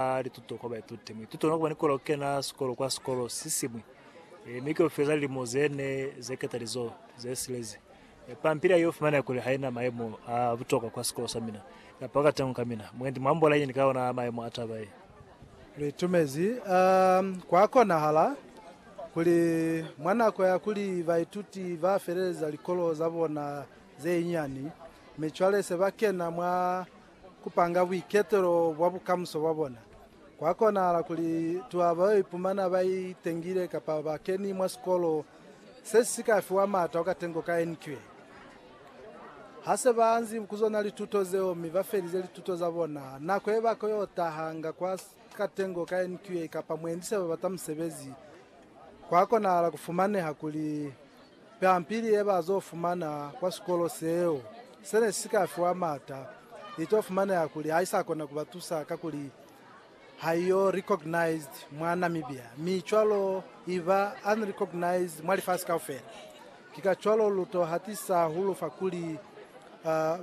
ba lituto kwa baituti. Muituti ona kuba ni kola kukena sikolo kwa sikolo si siñwi, e, mi keo feza lilimo ze ne ze ketalizo ze silezi. E, pampili ya yo fumaneha kuli haina maemo a butokwa kwa sikolo sa mina, kapa ka tengo ka mina. Mwendi mwa ambola yeñi ka ona maemo a taba ye? Litumezi, a kwa konahala kuli mwa nako ya kuli baituti ba feleleza likolo za bona ze nyani, mi cwale se ba kena mwa ku panga buiketelo bwa bukamuso bwa bona. Kwa konahala kuli tuha ba yo ipumana ba itengile kapa ba keni mwa sikolo se si ka fiwa m'ata o katengo ka NQA. Ha se ba anzi ku zona lituto zeo mi ba felize lituto za bona, nako ye ba ko yo taha nga kwa katengo ka NQA kapa mwendi se ba bata musebezi, kwa konahala ku fumaneha kuli Pampili ye ba zo fumana kwa sikolo seo se ne si ka fiwa m'ata, i to fumaneha kuli ha i sa kona ku ba tusa kakuli ha i yo recognized mwa Namibia mi cwalo i ba unrecognized mwa lifasi kaufela. Ki ka cwalo lu to hatisa hulu fa kuli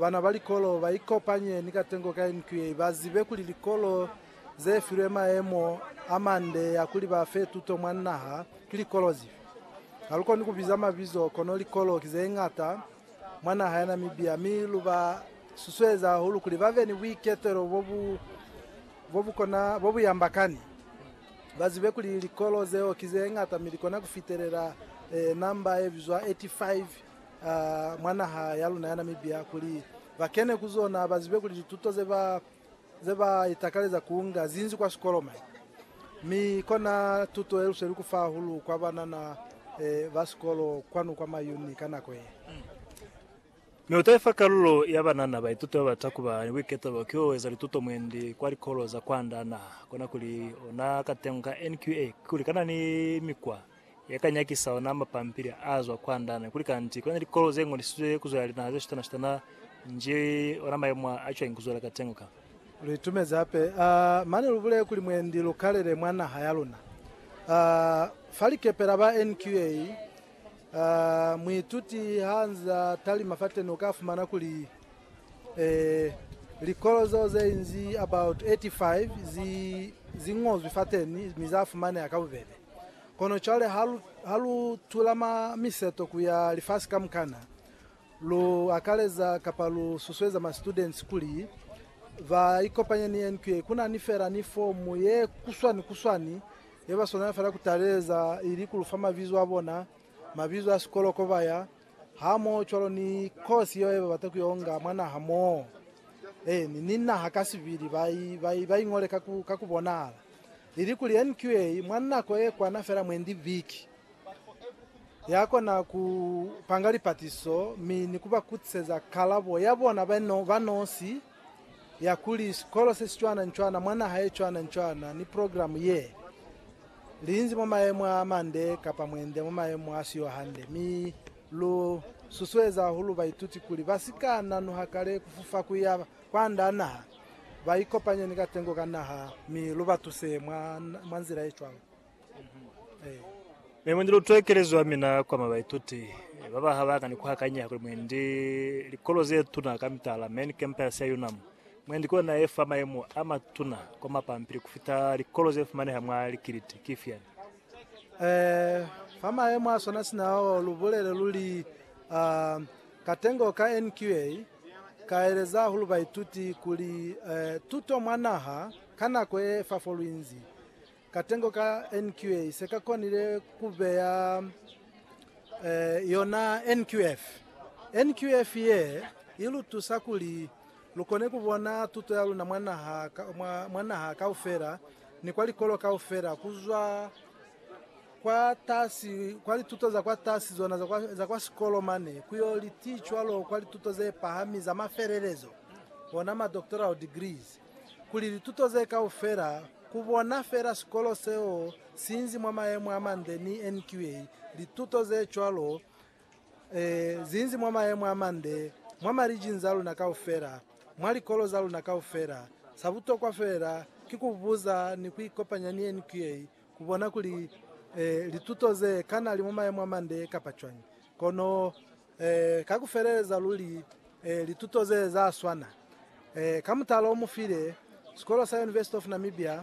bana ba likolo ba ikopanye ni katengo ka NQA, ba zibe kuli likolo ze filwe maemo a mande ya kuli ba fe tuto mwa naha ki likolo zifi? Ha lu koni ku biza mabizo, kono likolo ki ze ñata mwa naha ya Namibia, mi lu ba susueza hahulu kuli ba be ni buiketelo bo bu, bo bu kona, bo bu yambakani. Ba zibe kuli likolo zeo ki ze ñata mi li kona ku fitelela eh, namba ye bizwa 85 ah, mwa naha ya luna ya Namibia, kuli ba kene ku zona, ba zibe kuli lituto ze ba ze ba itakaleza ku nga zinzi kwa sikoloma, mi kona tuto ye luseli ku fa hahulu kwa banana ba sikolo kwanu kwa Mayuni ka nako ye. Mi u ta ifa kalulo ya banana baituti ba bata ku ba ni buiketelo ki o eza lituto mwendi kwa likolo za kwanda naha. Kona kuli ona ka tengo ka NQA kikuli kana ni mikwa ya ka nyakisa ona mapampili a zwa kwa ndana kuli kanti kuna ni likolo ze ngolisizwe ku zwela linaha ze shutana-shutana nji ona mayemo a cwañi ku zwela kateño ka. Lu itumezi hape, a mane lu bulele kuli mwendi lu kalele mwa naha ya luna. A fa likepela ba NQA, a muituti ha nza talima fateni uka fumana kuli Ee, likolo zeo ze inzi about 85 zi, zi ñozwi fateni mi za fumaneha ka bubebe. Kono cwale ha lu, ha lu tula ma, miseto ku ya lifasi kamukana, lu akaleza kapa lu susueza ma students kuli ba ikopanye ni NQA, ku na ni fela ni fomu ye kuswani kuswani ye ba swanela fela ku taleleza, ili ku lu fa mabizo a bona, mabizo a sikolo ko ba ya, Hamoho cwalo ni kosi yeo yeba bata kuyonga mwa naha moo, eh, ni, ni naha kasibili, ba i, ba i, ba i ngole ka ku, ka ku bonahala, ilikuli NQA mwa nako ye kwana fela mwendi viki, ya kona ku panga lipatiso mi ni ku ba kutiseza kalabo ya bona ba, ba nosi. ya kuli sikolo se si cwana-ncwana mwa naha ye cwana-ncwana ni progilamu ye linzi mwa mayemo a mande kapa mwende mwa mayemo a si yo hande, mi lu susueza hahulu baituti kuli ba si ka nanuha kale ku fufa ku ya kwand'a naha, ba ikopanye ni katengo ka naha mi lu ba tuse mwa nzila ye cwalo. Mi mwendi lutwe kelezo ya mina kwa mabaituti ba ba ha ba ka ni kuhakanyeha kuli mwendi likolo ze tuna ka mitala, main campus ya UNAM, mwendi ki ona ye fa mayemo a matuna kwa mapampili ku fita likolo ze fumaneha mwa likiliti. Ki ifiani? Eh, fa mayemo a swana sina ao, lu bulele lu li, uh, katengo ka NQA ka eleza hahulu baituti kuli, eh, tuto mwa naha ka nako ye fa fo lu inzi. Katengo ka NQA se ka konile ku beya yona NQF. NQF ye i lu tusa kuli lu kone ku bona tuto ya luna mwa naha kaufela ni kwa likolo kaufela ku zwa kwatasi kwa lituto za kwatasi zona za kwa sikolo mane ku yo li ti cwalo kwa lituto ze pahami za mafelelezo, ona ma doctoral degrees. kuli lituto ze kaufela ku bona fela sikolo seo si nzi mwa mayemo a mande ni NQA lituto ze cwalo e zi nzi mwa mayemo a mande mwa marijini za luna kaufela, mwa likolo za luna kaufela. Sa butokwa fela ki ku buza ni ku ikopanya ni NQA ku bona kuli e lituto ze kana li mwa mayemo a mande kapa cwañi. Kono. Ka ku feleleza luli, lituto ze za swana ka mutala o mu file Sikolo sa University of Namibia.